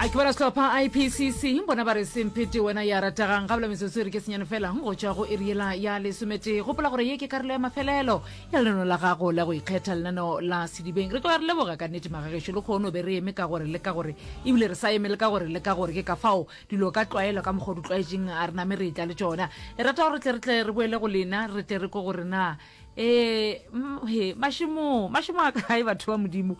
a ke bala setlhopha ipcc bona ba re semphete wena ya rategang ga bela metsotso e re ke senyane fela go tswa go eriela ya lesomete gopola gore ye ke karolo ya mafelelo ya lenano la gago la go ikgetha lenano la sedibeng re ka re leboga ka nnete magagešo le kgono be re eme ka gore le ka gore ebile re sa eme le ka gore le ka gore ke ka fao dilo ka tlwaelo ka mokgwa o di tlwaetseng a re name re tla le tsona re rata gore tle re tle re boele go lena re tle re ko gore na um he mašimo mašimo a kae batho ba modimo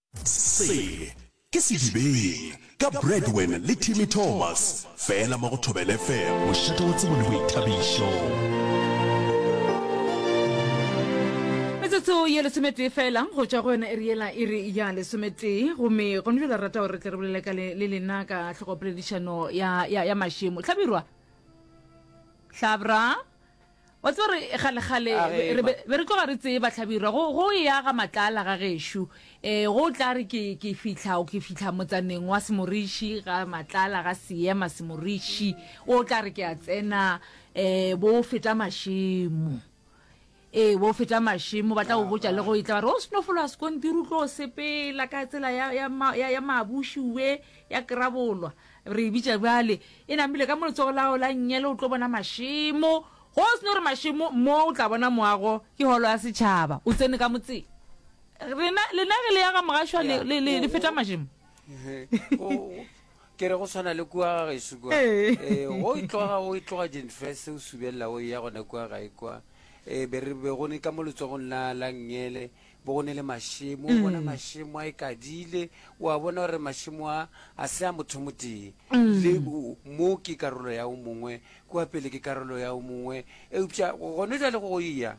Se ke Sedibeng ka Bradwen le Timmy Thomas fela mo go Thobela FM, mošate wa tsebo le boithabišo. Metsotso ye lesometee fela go tšwa go yona e re yela e re ya lesometee gomme gone jalo rata gore re tle re bolele ka le le lena ka tlhogopoledišano ya, ya, ya mašemo hlabirwa hlabra wa tseba re kgalekgale A ge re ba- be re tloga re tseba hlabirwa go go e aga matlaala ga gešo um go tla re ke ke fitlha ke fitlha motsaneng wa semoriši ga matlaala ga seema semoriši o tla re ke a tsena um bo feta mašemo ee bo feta mašemo ba tla go botša le go e tla ba re o seno fologa sekontiri o tlo o sepela ka tsela ya- ya ma- ya ya maabuši ue ya kerabolwa Re e bitša bjale, e namile ka mo letsogo la gago la nnyele, o tlo bona mašemo. Go se no re mašemo, mo o tla bona moago, ke Holo ya Setšhaba. O tsene ka motseng. Rena, lena ge le ya ga Mogašwa, le, le, le, le feta mašemo. Go, ke re go swana le kua ga gaešo kua. Ee. Ee, go e tloga, go e tloga Jenfrese o subelela o e ya gona kua gae kua. Ee, be re be go ne ka mo letsogong la, la nnyele, Bo go ne le mašemo, o bona mašemo a ikadile, o a bona gore mašemo a, a se a mothomotee. Le mo ke karolo ya o mongwe, kua pele ke karolo ya o mongwe. Eupša gone jale go eya,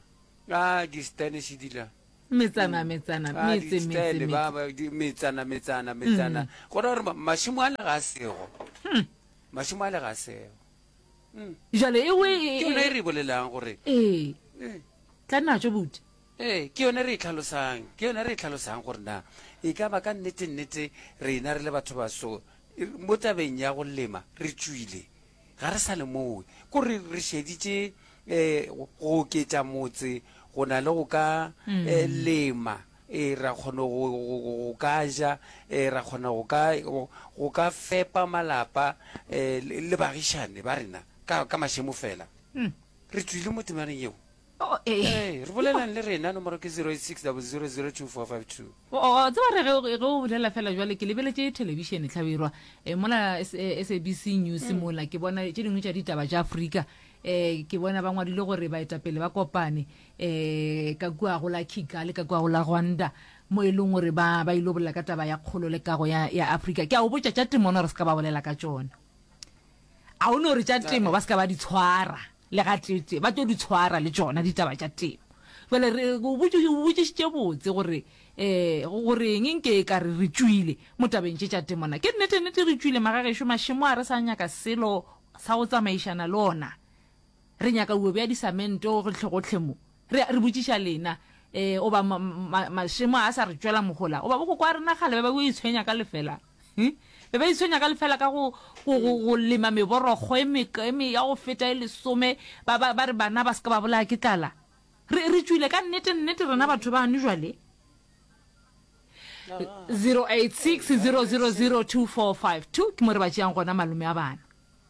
a di-Spanish di la. Metsana, metsana, metse, metse, metse. Di-Stele, ba, ba, di, metsana, metsana, metsana. Go ra gore mašemo a le ga a sego. Mašemo a le ga a sego. Jale ewe e, e, e. Ke yona e re e bolelang gore. Ee. Ee. Tla nna tšo, buti. Ee, ke yona re e tlhalosang. Ke yona re e tlhalosang gore na e ka ba ka nnete-nnete rena re le bathobaso mo tabeng ya go lema re tšwile, ga re sa lemoge gore re šeditše um go oketša motse go na le go ka um lema. Ee, ra kgona go go ka ja, um ra kgona go ka go ka fepa malapa um le bagišani ba rena ka ka mašemo fela. Re tšwile mo temaneng yeo. Oh, eh. Hey, re bolelang le rena nomoro ke 0860002452. O o tseba re ge ge o bolela fela jwale ke lebeletše telebišene tlhabirwa eh, mola S- eh, sabc news mola ke bona tše dingwe tša ditaba tša afrika um ke bona ba ngwadile gore baetapele ba kopane um ka kua go la kigali ka kua go la rwanda mo e leng gore ba ba ile bolela ka taba ya kgolo le kago ya ya afrika ke a o botša tša temo ona re se ka ba bolela ka tšona a o no re tša temo ba se ka ba di tshwara Le gatee-tee ba tlo di tshwara le tšona ditaba tša temo. Bjale re o botšišitše botse gore um go reng nke e ka re re tšwile mo tabeng tše tša temo. Na ke nnete-nnete re tšwile magagešo? Mašemo a re sa nyaka selo sa go tsamaišana le ona. Re nyaka uwe bja disamente gohlegohle mo. Re a re botšiša lena, ee, goba ma, ma, mašemo a a sa re tšwela mohola, goba bokoko a rena kgale ba be bo itshwenya ka lefela. He? Be ba itshwenya ka lefela ka go, go, go, go lema meborokgo e meka, e me, ya go feta e lesome, ba, ba, ba re bana ba se ka ba bolaya ke tlala. Re, re tšwile ka nnete, nnete rena batho bano jwale. 086 000 245 2 ke mo re ba tšeang gona malome a bana.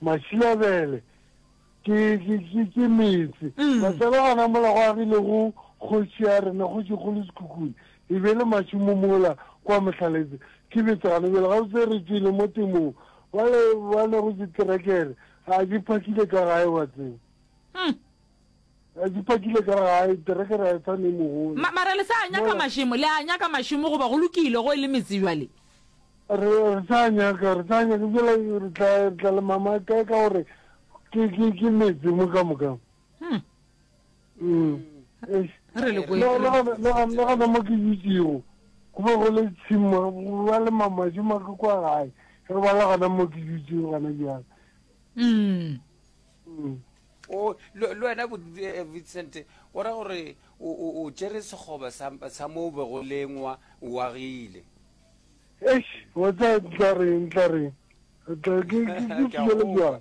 Mašilabele ke, ke, ke, ke metse. Matsalo a namolago a rile go kgoši ya rena, Kgošikgolo Sekhukhune, e be le mašomo mola kwa Mohlaletse. Ke betsana bjale gabotse re tšwele mo temong. Bale ba lego diterekere, a di phakile ka gae, wa tseba. Re di pakile ka gae, terekere a e fa ne mogolo. Ma, mara le sa a nyaka mašemo, le a nyaka mašemo goba go lokile go e le metse bjale? Re, re sa a nyaka, re sa a nyaka, bjale re tla, re tla le mama kae ka gore ke, ke, ke metse mo ka moka. Hmm. Mm. Eish. Re le kwe. Le, le gona, le gona, le gona mo ke dutšego, go be go le tshimo, go ba le mamašo ma ke kwa gae, re ba le gona mo ke dutšego gona bjale. Mm. o le le wena Bo- eh, vincent o ra gore o o- o tšere sekgoba sa sa mo o bego lengwa o agile eish wa tsa tla reng tla reng tla ke ke- ke Ke a fihlela go kwa. jwang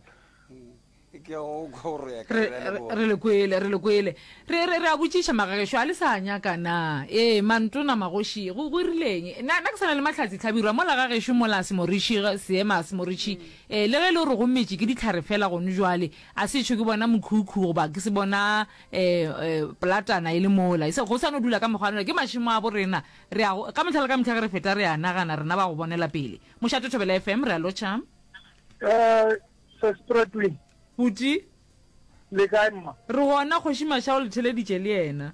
Mm. ke a go kwa gore ya ka re bjale re- bona. re le kwele re le kwele re re re a botšiša magagešo a le sa nyaka na ee mantona magoši go go rileng na na ke sana le mahlatsi tlhabirwa mola gagešo mola semoriši seema semoriši Ee, le ge e le gore go metše ke dihlare feela gone bjale, a se etšho ke bona mokhukhu goba ke se bona um polatana e le mola. Go sa no dula ka mekgwa ya lona, ke mašemo a bo rena. Re a go, ka mehla le ka mehla ge re feta re a nagana, rena ba go bonela pele. Mošate Thobela FM, re a lotšha. Um Sespretoe. Buti. Le kae mma? Re gona, Kgoši Masha o le theleditše le yena.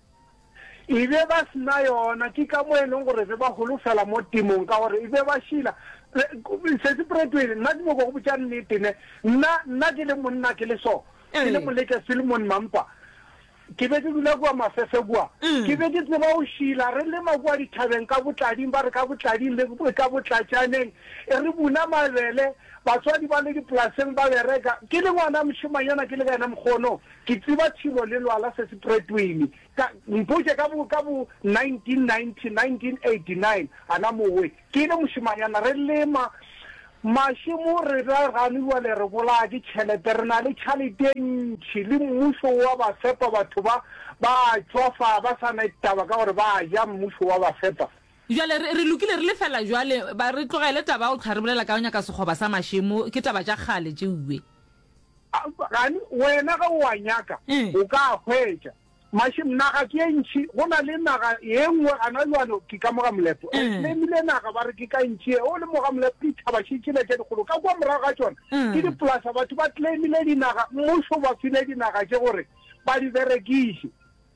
E be ba se na yona, ke ka mo e leng gore be ba holofela mo temong, ka gore e be ba šila. Sesi Pratweli, nna ke nyoko go botša nnete ne, nna, nna ke le monna ke le so, ke le Moleke Filmon Mampa, ke be ke dula kua Mafefe kua, ke be ke tseba go šila, re lema kua dithabeng ka Botlading, ba re ka Botlading le ka Botlatšaneng, e re buna mabele, batswadi ba le dipolaseng ba bereka, ke le ngwana mošemanyana ke le ka yena mokgono, Ke tseba thimo le lwala se se pretwini. Ka, mpotše ka bo, ka bo 1990, 1989, a na mowe, ke ile mošemanyana, re lema mašemo, re ra gane bjale re bolaya ke tšhelete, re na le tšhalete e ntši, le mmušo o a ba fepa, batho ba, ba a tšwa fa, ba sa na taba ka gore ba a ja, mmušo o a ba fepa. Bjale, re, re lokile, re lefela bjale, ba re tlogele taba ya go hlaribolela ka go nyaka sekgoba sa mašemo, ke taba tša kgale tšeo, Iwe. Eupša gane wena ge o a nyaka, o ka a hwetša. Mašem, naga ke e ntši, go na le naga ye nngwe gana bjalo, ke ka mo ga molepo. Re lemile naga, ba re ke ka ntši ye, o le mo ga molepo, dithaba še tšela tše dikgolo ka kua morago ga tšona, ke dipolasa. Batho ba lemile dinaga, mmušo o ba file dinaga tše gore ba di berekiše.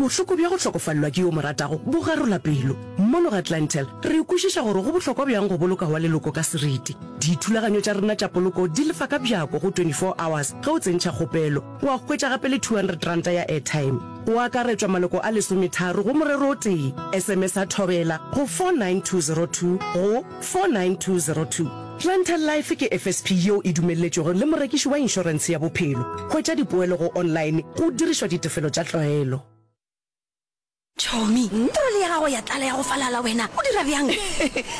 Bohloko bja go hlokofalelwa ke yo o mo ratago bo garola pelo. Mono ga Clientele, re kwešiša gore go bohlokwa bjang go boloka wa leloko ka seriti. Dithulaganyo tša rena tša poloko di lefa ka bjako go 24 hours ge o tsentšha kgopelo. Wa hwetša gape le 200 ranta ya airtime. Go akaretšwa maloko a lesometharo go morero o tee. Sms-a Thobela go 49202 go 49202. Planter Life ke FSP yeo e dumelletšwego le morekiši wa inšorense ya bophelo. Hwetša dipoelo go online go dirišwa ditefelo tša tlwaelo. Tšhomi, trole ya gago ya tlala ya go falala, wena o dira bjang?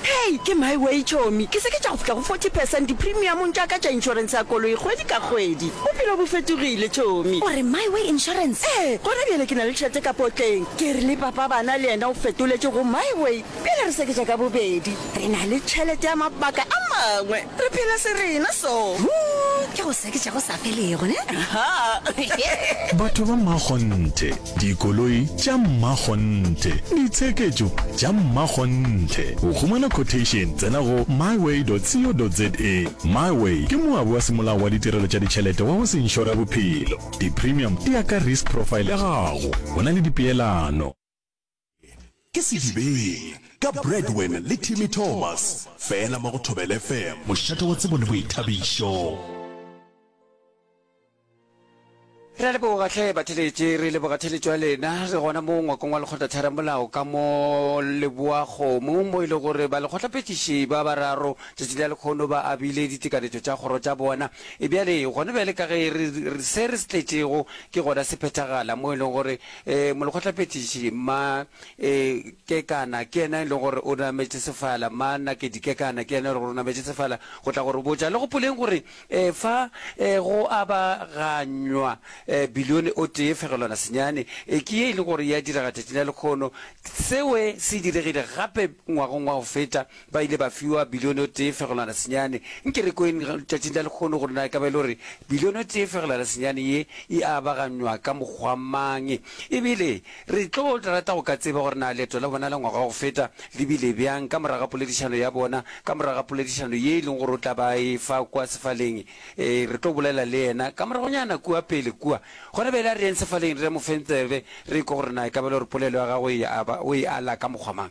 Hei, ke my way tšhomi, ke seketša go fihla go forty percent dipremiamong tša ka tša inšorense ya koloi kgwedi ka kgwedi. Bophelo bo fetogile tšhomi. O re my way insurance? Ee, gona bjale ke na le tšhelete ka potleng. Ke rile papa bana le yena o fetoletše go my way. Pele re seketša ka bobedi, re na le tšhelete ya mabaka a mangwe. Re phela serena so. Hoo ke go seketša go sa felego, ne? Aha. Batho ba mmakgonthe, dikoloi tša mmakgonthe, ditsheketšo tša mmakgonthe. Go humana quotation, tsena go myway.co.za. Myway ke moabi wa semolao wa ditirelo tša ditšhelete wa go se inšore bophelo. Di-premium di ya ka risk profile ya gago. Go na le dipeelano. Ke Sedibeng ka Bradwin le Timmy Thomas fela mo go Thobela FM. Mošate wa tsebo le boithabišo. Re a leboga hle batheletši, re leboga theletšo ya lena. Re gona mo ngwakong wa lekgotlatheramolao ka mo Leboakgomo mo e le gore ba lekgotlaphethiši ba bararo tšatši la lekgono ba abile ditekanyetšo tša kgoro tša bona. E bjale gona bjale ka ge re se re se tletšego ke gona se phethagala mo e lego gore E, molekgotlaphethiši, mma, e, Kekana, ke yena e lego gore o nametše sefala, mma Nakedi Kekana, ke yena e lego gore o nametše sefala, go tla go re botša. Le gopoleng gore, e, fa, e, go aba ganywa, e, bilione o tee fegelwana senyane, e, ke ye e lego gore ya direga tšatšing la lekgono. Sewe se diregile gape ngwagong wa go feta, Ba ile ba fiwa bilione o tee fegelwana senyane. Nke re kweng tšatšing la lekgono gore na e ka ba e le gore bilione o tee fegelwana senyane ye e abaganywa ka mokgwa mang. E bile re tlo rata go ka tseba gore na leeto la bona la ngwaga wa go feta le bile bjang ka morago ga poledišano ya bona, ka morago ga poledišano ye e leng gore o tla ba e fa kua sefaleng. Ee, re tlo bolela le yena ka moragonyana kua pele kua. Gona bjale a re yeng sefaleng re mo feng tsebe, re ekwe gore na e ka ba e le gore polelo ya gagwe o e ala ka mokgwa mang.